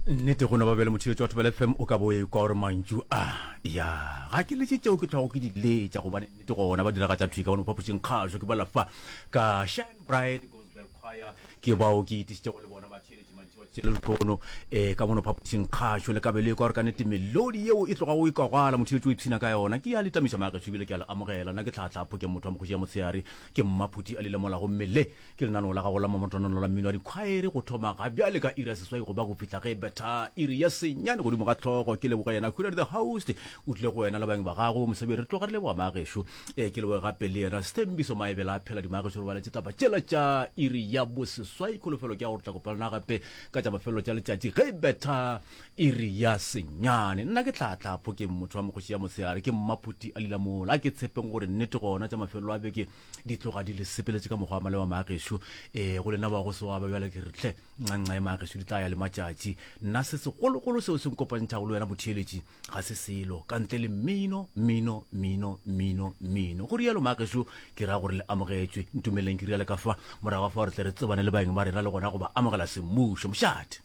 nnete go no ba bjale mothiletso wa thobela fm o ka bo e kwa gore mantšu a ya ga ke letse tšeo ke tlhogo ke di letša gobane nnete gona ba diraga tša thwika gone mo phapošeng kgašo ke balafa ka shine bright gospel choir ke bao ke itišitše go le bona ba theletše mantši wa tšele lekono um eh, ka mono phapošeng kgašo le kabelo e kwa gore ka nnete melodi yeo e tloga o e kwagwala mothiletso o ipshina ka yona ke ya le tamiša maagešo ebile ke a le amogela nna ke tlhatlhapho ke motho wa mokgoši ya motshegare ke mmaphuti a le lemolago mmele Ke lenaneo la gago la mamotonolo la mmino wa dikhwaere go thoma ga bjale ka iri ya seswai go ba go fihla ge e betha iri ya senyane godimo ga tlhogo ke leboga yena khuradi the host o tlile go wena le bang ba gago mosebedi re tloga re leboga maagešo ee ke leboge gape le yena sethembiso maebela a phela dimaagešo re baletse taba tšela tša iri ya boseswai kholofelo ke ya gore tla kopelana gape ka tša mafelelo tša letšatši ge e betha iri ya senyane nna ke tlhatlhapho ke motho wa mokgoši ya motshegare ke mmaphuti a lila mola a ke tshepeng gore nnete gona tša mafelelo a beke di tloga di le sepeletše ka mokgwa wa malewa maagešo e go lena wa go se wa ba bjale ke re tle nganxa e maagešo di tla ya le matšatši nna se segologolo seo se nkopantšhago le wena motheeletši ga se selo ka ntle le mmino mmino mmino mmino mmino go rialo maagešo ke ra gore le amogetšwe ntumeleleng ke riale ka fa morago fa gore tle re tsebane le baeng ba rena le gona go ba amogela semmušo mošate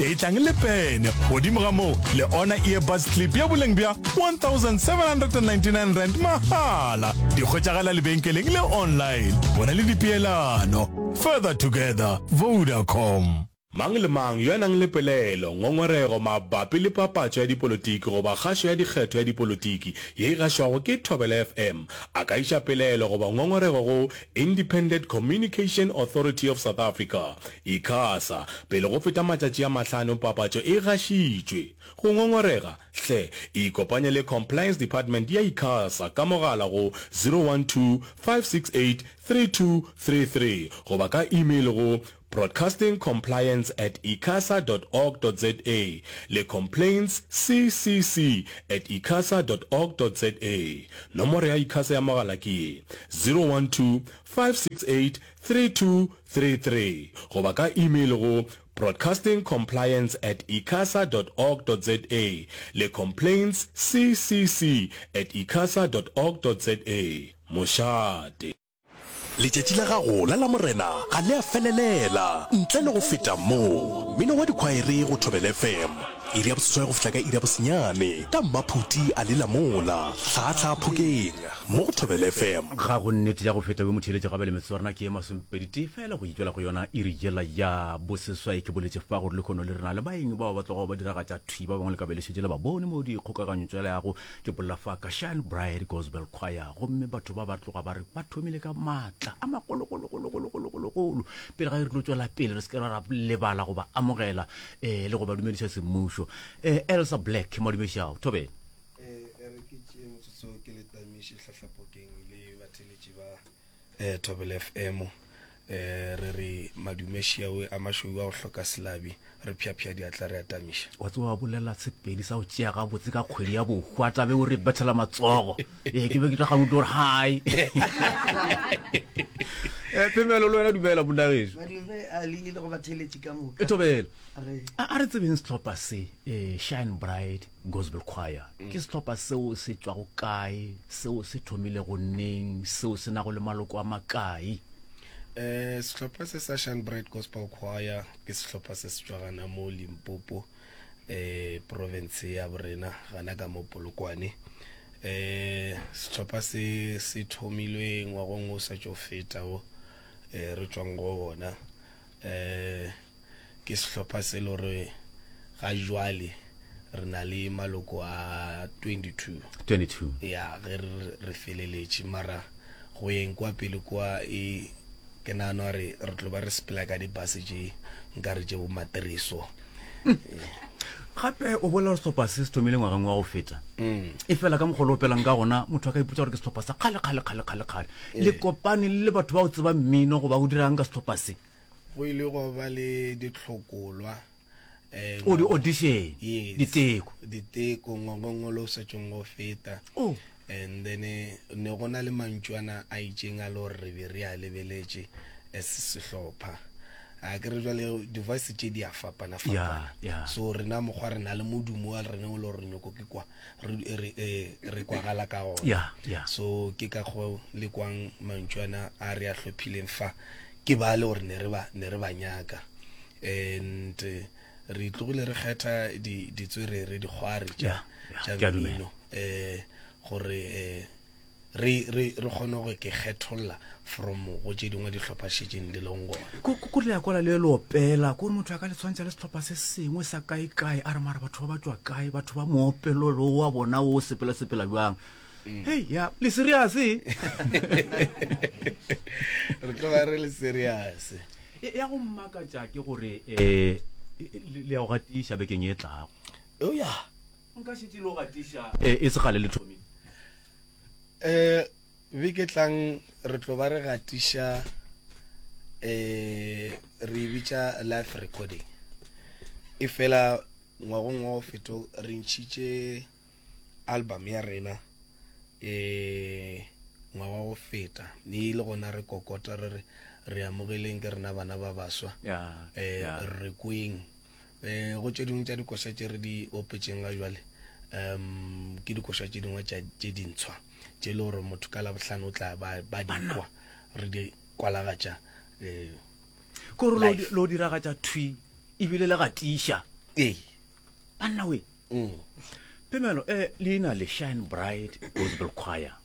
Etlang le pene. Godimo ga moo, le ona earbuds clip ya boleng bja 1799 rand mahala. Di hwetšagala lebenkeleng le online. Bona le dipeelano. Further together. Vodacom. Mang le mang yo a nang le pelaelo, ngongorego mabapi le papatšo ya dipolotiki goba kgašo ya dikgetho ya dipolotiki ye e gašwago ke Thobela FM a ka iša pelaelo goba ngongorego go Independent Communication Authority of South Africa, Icasa, pele go feta matšatši a mahlano papatšo e gašitšwe. Go ngongorega? Hle ikopanye le Compliance Department ya Icasa ka mogala go 012 568 3233 goba ka email go Broadcasting Compliance at icasa dot org dot za le Complaints CCC at icasa dot org dot za. Nomoro ya Icasa ya mogala ke ye, 012-568-3233 goba ka email go Broadcasting Compliance at icasa dot org dot za le Complaints CCC at icasa dot org dot za. Mošate. Letšatši la gago la Lamorena ga le a felelela. Ntle le go feta moo, mmino wa dikhwaere go Thobela FM, iri ya boseswai go fihla ka iri ya bosenyane, ka mmaphuti a lela mola hlaahlaa phokeng mo go Thobela FM. Ga go nnete ya go feta we motheeletši gape le metsotswana ke ye masomepeditee fela go itšwela go yona iri yela ya boseswai. Ke boletše fa gore lekhono le rena le baeng bao ba tlogago ba diragatša thwi ba bangwe le ka be le šetše le ba bone mo dikgokaganyotswaleago Ke bolela fa ka Shine Bright Gospel Choir gomme batho ba ba tloga ba re ba thomile ka maatla a magologologologologologolo pele ga e re tlo tšwela pele re se ke ra ra lebala go ba amogela um le go ba dumediša semmušo um elsa black madumedišago thobeng e re ke tšee motsotso ke le tamiše hlahlapokeng le batheletši ba eh, Thobela FM eh, re re madume šiawe a mašweu a go hloka selabi re phyaphya diatla re atamiša wa tse wa bolela sepedi sa go tšea gabotse ka kgwedi ya bohwa tla be o re bethela matsogo ee ke be ke tla gane utlwa gore hai Eh, phemelo le wena dumela monnageso badumbe a le ile go batheletši ka moka e thobela Re- a a re tsebeng setlhopha se eh, shine bright Gospel Choir ke sehlopha seo se tšwago kae, seo se thomilego neng, seo se nago le maloko a makae? Eh, sehlopha se sa Shanbright Gospel Choir ke sehlopha se se tšwa gana mo Limpopo, eh, province ya borena gana ka mo Polokwane. Eh, sehlopha se se thomilwe ngwagong o sa tšo feta o eh, re tšwang go ona. Eh, ke sehlopha se le gore ga jwale re na le maloko a 22 22 ya ge re feleletše mara go yeng kwa pele kwa e ke nano re re tlo ba re sepela ka dibase tše nkare tše bomatiriso gape o bolela gore setlhopha se se thomile ngwageng wa go feta mm. e fela ka mokgolo o pelang ka gona motho a ka ipotsa gore ke setlhopha sa kgale kgale kgale kgale kgale le eh. kopane le batho ba o tseba mmino goba o dirang ka setlhopha se go ile gwa ba le ditlhokolwa eh, o di-audition Yes. diteko diteko ngwagongolo o setšong go feta Oh. and then eh, ne go na le mantšwana a itšeng a le gore re be re a lebeletše as sehlopha a ke re jale device tše di a ya fapana-fapana ya so rena mokgwa re na le modumo wa rena o le gore nyoko ke kwa re kwagala ka ona so ke ka go le kwang mantšu ana a re a hlophileng fa ke ba le gore ne re ba ne re ba nyaka and eh, re tlogile re kgetha ditswerere dikgware tša mmino um gore um re re re kgone go ke kgetholla from go tše dingwe dihlopha šetšeng di leng gona ko ko- ko le ya kwala le le opela ko re motho a ka le tshwantšha le setlhopha se sengwe sa kae kae a re mara batho ba ba tšwa kae batho ba moopelo lo wa bona o sepela sepela bjang hei ya le serious e? re tloga re le serious E- ya go mmakatša ke gore um le ya go gatiša bekeng e tlago eoya Nka šetše no gatiša. Ee, e se kgale le thomile. Ee, beke e tlang re tlo ba re gatiša, ee, re e bitša live recording. E fela ngwagong wa go feto re ntšhitše album ya rena, ee, ngwaga go feta. Mme le gona re kokota re re, Re amogeleng ke rena bana ba baswa, ee, re kweng. um go tše dingwe tša dikoša tše re di opetšeng ga jwale um ke dikoša tše dingwe tše dintshwa tše e le gore motho ka labohlano o tla ba dikwa re di kwalagatša um kore lo diragatša thwi ebile le gatiša ee banna we Mm. Pemelo, eh, leina le Shine Bright Gospel Choir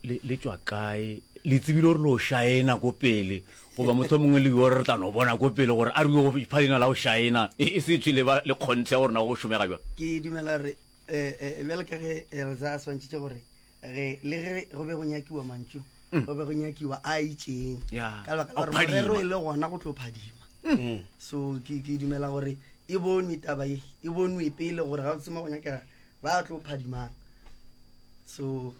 le le tswa kae le tsebile gore lo shaena ko pele goba motho mongwe le yo re tla no bona ko pele gore a re yo pha leina la go shaena e, e se tshwe le ba le kgontshe gore na go šomega jwa ke dumela re eh, eh, bjale ka ge eh, re sa swantšhitše gore ge le ge go be go nyakiwa mantšu mm. go be go nyakiwa a itšeng ka lebaka gore morero e le gona go tlo phadima mm. so ke dumela gore e bonwe taba e e bonwe pele gore ga o tsema go nyakega ba tlo phadimang so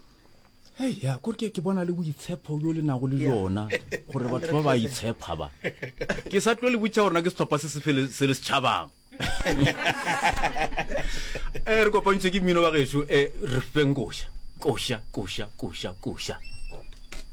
hei ya kore ke ke bona le boitshepho yo le nago le yona gore batho ba ba itshepha ba ke sa tlo le botsa gorena ke setlhopha se se le setšhabang e re kopantšwe ke mmino wa geso e re feng koša koša koša koša koša